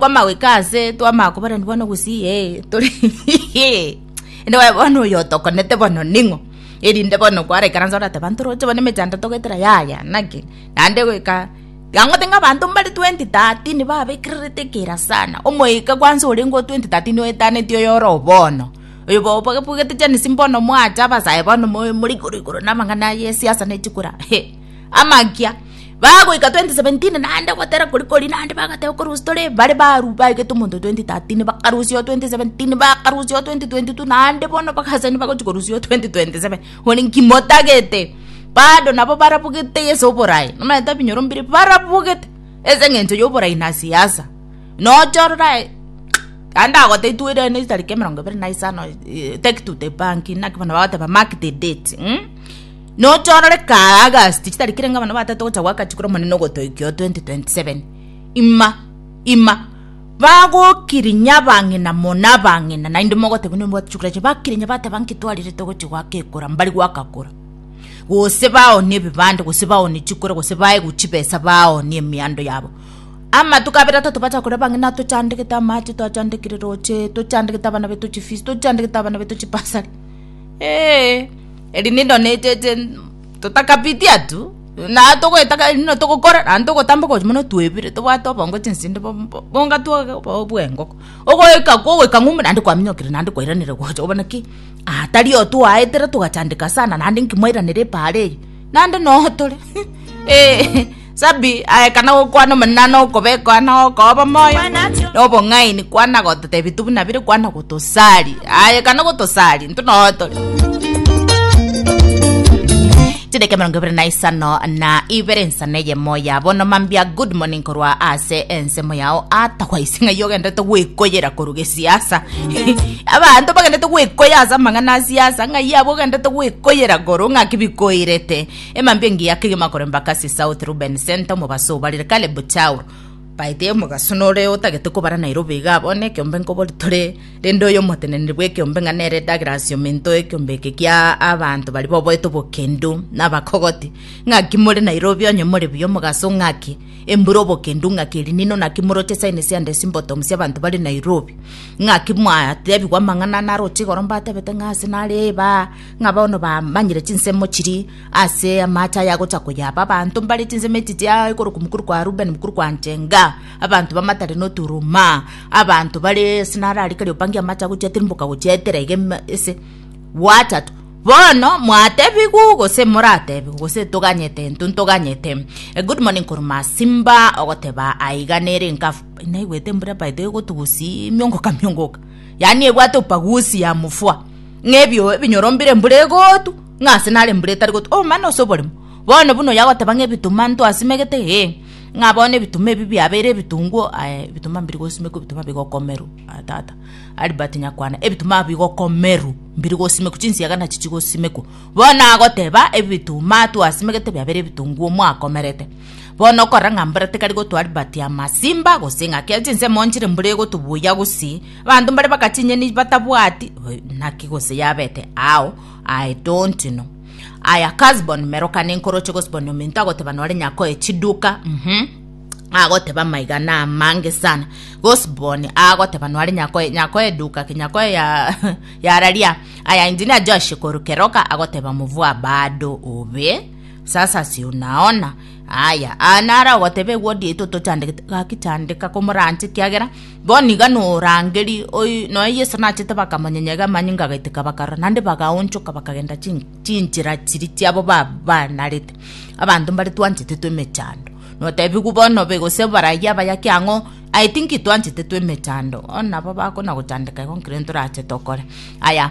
Kwama goika aase, twama akobarani bono gusii, ee, tore Inde bae bono oyo otokonete bono ning'o? Erinde bono kwaraikaransa orateba ntoroche bono emechando togoetera yaya naki? Naende goika tiga ngote ng'a abanto mbare 2030 babekererete ekera sana, omoika kwanza orenge o 2030 oetaneti oyo oro bono. Oyo bobwabugete Genesis mbono mwacha abasae bono more igoro igoro na amang'ana ye siasa ne chikura, amakia. Bagoika 2017 naende gotera koria koria naende bagateba okorusia tore bare baru baegete omonto 2013 bakarusia oo 2017 bakarusia oo 2022 naende bono bagasani bagochi korusia oo 2027 igo ninki motagete bado nabo barabugete ase oborae nomanyete ebinyoro mbire barabugete ase eng'encho yoborai na siasa nocha ororo aye naende ndagotebia twerane etariki emerongo ebere na isano take to the bank naki bono bagoteba mark the date. Notorore kaa August chitari kere ngabana batato gocha gwaka chikura omonene ogotoikia oo 2027 ima ima bagokirinya abang'ina mona abang'ina naende mogotebi nembwate chikura chie bakirinya bateba nkitwarire togochi gwaka ekura mbari gwaka kura gose baoni ebibande gose baoni chikura gose baegu chibesa baoni emiando yabo amatuko abere atato bacha kore abang'ina tochandegete amache twachandegete roche tochandegete abana betu chifees tochandegete abana betu chibasari eeh. Eri nigo naetete totakapiti atwo, na togoeta kare nigo togokora, naende togotamba okochi mono twebire, tobwate obongo chinsende bo- bo- bonga twobe obo bw'engoko. Ogoika kogoika ng'umbu naende kwaminyokire naende kwairanire gocha obo naki, aa tari otwaetera togachandeka sana naende nki mwairanire epaara eye, naende noo tore eeh. Sabi aekana gokwana omonene okobekoa na okoa obomoyo na obong'aini kwana gototebi tu buna bire kwana gotosari aekana gotosari intwe noo tore chideka emerongo ebere na isano na ibere nsana eyemo ya bono mambia good morning korwa ase ensemo yao atagwa ase ng'ai ogendete gwekoyera korwa gesiasa abanto bagendete gwekoyera ase amang'ana a siasa ng'ai abo ogendete gwekoyera korwa ng'aki bikoirete Emambia engiya kegima koremba Kasi South Ruben Center omobaso obarire Caleb Chauro Paite omogaso nore otagete kobara Nairobi iga abone ekiombe nkobori tore rende oyo omoteneneri bw'ekiombe ng'a nere Douglas Ominto ekiombe eke kia abanto bari boboete obokendu nabakogoti ng'aki more Nairobi onye more buya omogaso ng'aki embura obokendu ng'aki elinino naki moroche signs and symptoms y'abanto bare Nairobi ng'aki mwatebigwa amang'ana naroche igoro mbatebete ng'a ase nare eba ng'a bono bamanyire chinsemo chiri ase amache aya agocha koyaba abanto mbare chinsemo echichi aa ekero omokuru kwa Rubeni, omokuru kwa Njenga, abanto bamatare na oturuma, abanto bare ase naro aria kare opangie amache agochiatirimboka gochia etera iga ime ase gwatato. Bono mwatebigwu gose moratebigwe gose toganyete intwe ntoganyete. A good morning korwa Masimba ogoteba aiga nere enkafu, naigwete mbura by the way gotugusimiongoka miongoka. yaani ebwate opagusi ya mofua, ng'a ebio ebinyoro mbire embura egotu, ng'a ase nare embura etari gotu, obomanno ase oborimo. Bono buna oyagoteba ng'a ebituma ntwasimegete, ee, ng'a bono ebituma ebi biabeire ebitunguo, aye ebituma mbiri gosimekwa ebituma bigokomerwa, aye tata. Albert Nyakwana, ebituma bigokomerwa mbiri gosimekwa, chinsiaga nachi chigosimekwa. Bono nagoteba ebituma twasimegete biabeire ebitunguo mwakomerete. Bono okorora ng'a mbura tekari gotoa ribati ya masimba, gose ng'a kera chinsemo nchire mbura egotobuya gusii, abanto mbare baka chinyeni batabwati eh, naki gose yabete ao, I don't know. Aya Kasbon meroka nenkoroche Gosbon ominto agoteba nore nyakoe chiduka mhm agoteba maiga na amange sana Gosbon agoteba nore nyakoe nyakoe eduka ki nyakoe ya yararia aya engineer Josh koru keroka agoteba mvua bado obe Sasa si unaona? Aya, aa naro ogoteba egwodi yaito tochandegete, gaki chandeka komoranche, ekiagera bono iga norangeri oyi nonya Yeso nachete bakamonyenyega amanyinga agaiteka bakarora, naende bagaonchoka bakagenda chi chinchera chiria chiabo ba banarete. Abanto mbare twanchetetwe emechando, notebigwa bono be gose baraiyo abayaki ang'o, I think twanchetetwe emechando, bono nabo bakona gochandeka igo nkirentorache tokore. Aya.